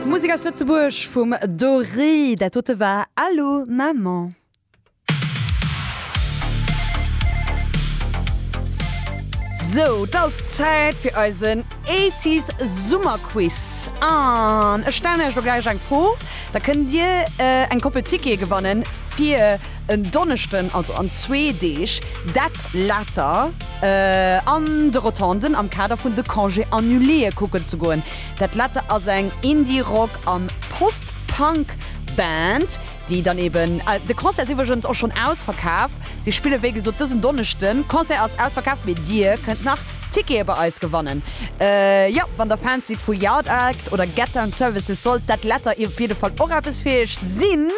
Musek aus Lëtzebuerg vum Doré, dat dote war Allô Maman. Sou, et ass Zäit fir eisen Eighties Summerquiz. An ech stellen iech elo gläich eng Fro, da kënnt dir eng Koppel Tickete gewannen fir. En Donneschden, also an zwee Deeg, dat later an de Rotonden am Kader vun de Congés annulés kucken ze goen. Dat later ass eng Indie-Rock an Post-Punk Band, déi dann eben, de Concert ass iwwregens och schonn ausverkaf, si spillen wéi gesot dësen Donneschden, Concert ass ausverkaf, mee dir kënnt nach Tickete bei eis gewannen. Jo, wann der Fans sidd vu Yard Act oder Get Down Services, sollt dat later op jidde Fall och eppes fir iech sinn.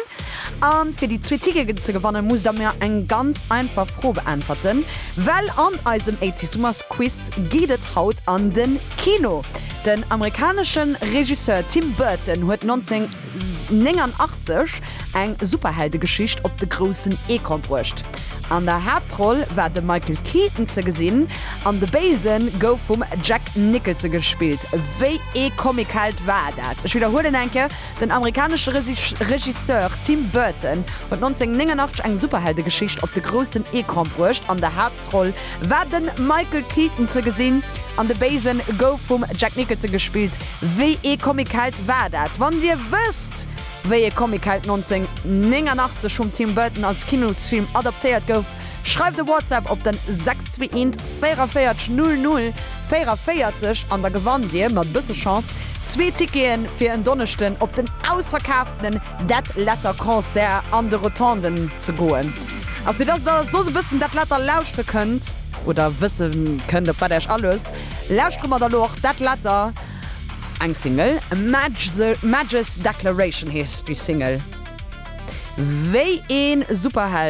An fir déi zwee Tickegen ze gewannen musst der mir eng ganz einfach Fro beäntwerten, well an eisem Ey Tissumas Quiz geet et haut an den Kino. Den amerikaneschen Regisseur Tim Burton huet 1989 eng Superheldegeschicht op de groussen Ecran bruecht. An der Haaptroll war de Michael Keaton ze gesinn an de Béisen gouf vum Jack Nicholson gespillt. Wéi ee Comic-Held war dat? Ech widderhuelen eng Kéier. Den amerikanesche Regisseur Tim Burton huet 1989 eng Superheldegeschicht op de groussen Ecran bruecht. An der Haaptroll war de Michael Keaton ze gesinn an de Béise gouf vum Jack Nicholson gespillt. Wéi ee Comicheld war dat? Wann Dir wësst, wéi ee Comicheld 1989 vum Tim Burton als Kinosfilm adaptéiert gouf, Schreift e WhatsApp op den 621 44 00 44 an da gewannt dir mat e bësse Chance zwee Ticketen fir en Donneschden op den ausverkaaftenen Dead Letter Concert an de Rotonden ze goen. A fir dass der soss e bëssen Dead Letter lauschtere kënnt oder wësse kënnt op wat der iech aluesst, lauschtere mer der elo och Dead Letter, eng Single, Maj's Declaration heescht déi Single, wéi ee Superheld,